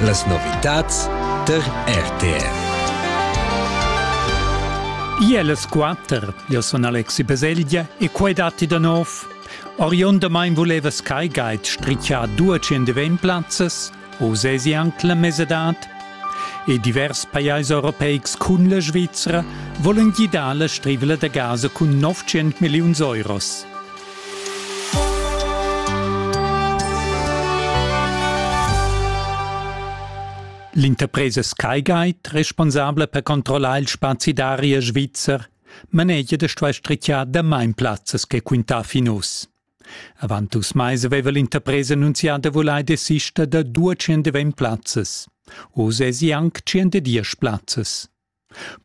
Las novitads tar RTR. Io è las quatter, io sun Alexi Baselgia e quai datti da nov. Oriundamain vuleva Sky Guide strichar due centeven plazzas, o sesi anc la mesadad? E divers pajais europeics cun la Svizzera volen gidar la strivela da gas cun 900 milliuns euros. L'interpresa Skyguide, responsabla per controllar il spazi d'aria svizzer, manegia da stuer strichiar damain plazzas che quintà fin uss. Avant dus mais aveva l'interpresa annunzià da vulair desister da 220 plazzas. Oz è sie anc 110 plazzas.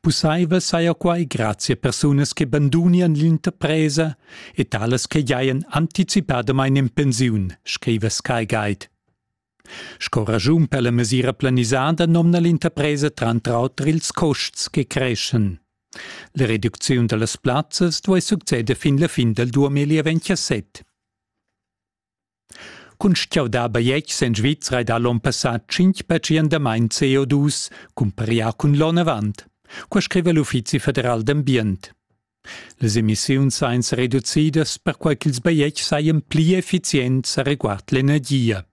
Pusseivel saja quai grazia persunas che bandunian l'interpresa e talas che giajan anticipadamain en pensiun, scriva Sky Guide. Sco raschun per la mesira planisada nomna l'interpresa tranter auter ils custs che creschan. La reducziun da las plazzas duai succeder fin la fin dal 2027. Cuntschiauda baietg sen Svizra ed ha l'on passà tschinch pertschiendamaint CO2 cumparià cun l'on avant. Qua scriva l'Uffizi federal d'ambient. Les emissiuns sain reducidas perquai ch'ils baietgs sajan pli effizients a reguard l'energia.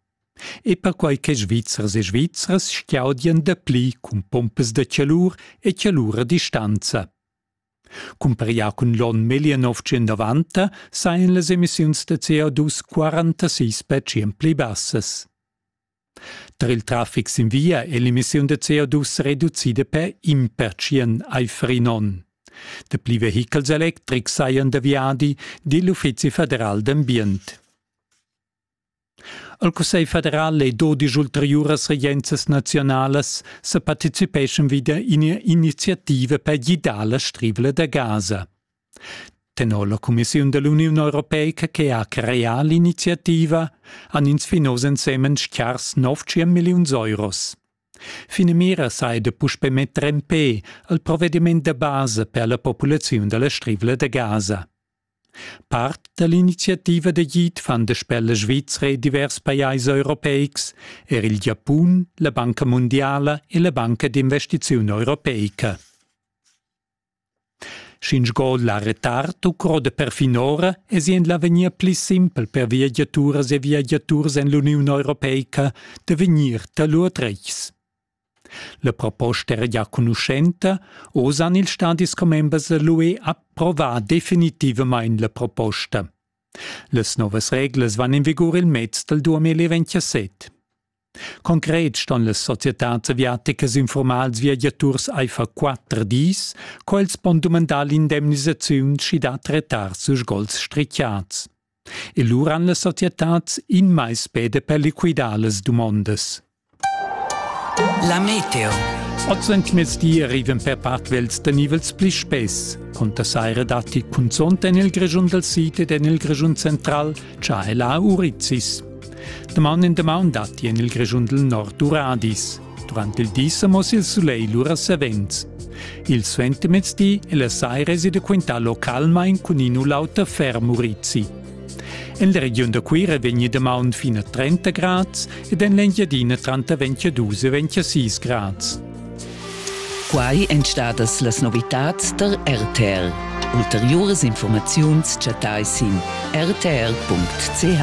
E perquai che Svizzers e Svizras schiaudian dapli cun pompas da chalur e chalura distanza. Cumparià cun l'onn 1990 sajan las emissiuns da CO2 46 per tschient pli bassas. Tar il traffic sin via è l'emissiun da CO2 reducida per in pertschient aifer in onn. Dapli vehichels electrics sajan da viadi, di l'Uffizi federal d'ambient. al cussegl federal e do digl ulteriuras regienzas naziunalas sa participeschan wieder in iniziativa per gidar la strivla da Gaza. Tenor la Commissiun dell'Union Europeica che ha creà l'iniziativa han ins fin oz ensemen schars 9 milliuns euros. Finamira sai da puspe metter en pe al provvediment da base per la populaziun della strivla da Gaza. Part da l'iniziativa da guid fan da spella svizra e divers pajais europeics er il Giapun, la Banca mundiala e la Banca d'investiziun europeica. Sch'ins la retard u croda perfinora es in l'avegnir pli simpel per viagiaturas e viagiaturs en l'Uniun Europeica da vegnir da lur retgs. La proposta era gia conuschenta, oz han ils stadis commembers l'UE approvà definitivamain la proposta. Las novas reglas van in vigur il mez dal 2027. Concret ston las societads aviaticas informals viagiaturs aifer quatter dis, quels pon dumandar l'indemnisaziun sch'i dat retards u sgols strichiads. E lura han las societads in mais peda per liquidar las dumondas. La meteo. Oz en mezdi arrivan per part vels da nivels pli spess. Conta saira datti cunzont en il Grischun dal sid ed en il Grischun central, cha la Urizis. Damaun in damaun datti en il Grischun dal nord Uradis. Durant il di sa moss il sulegl lura savens. Il suentermezdi è la saira esida quintalo calmain cun in'ulauta fer Murizi. En la regiun da Cuira vegni damaun fin a 30 grads ed en l'Engiadina tranter 22 e 26 grads. Quai èn stadas las novitads tar RTL. Ulteriuras informaziuns chattai sin rtl.ch.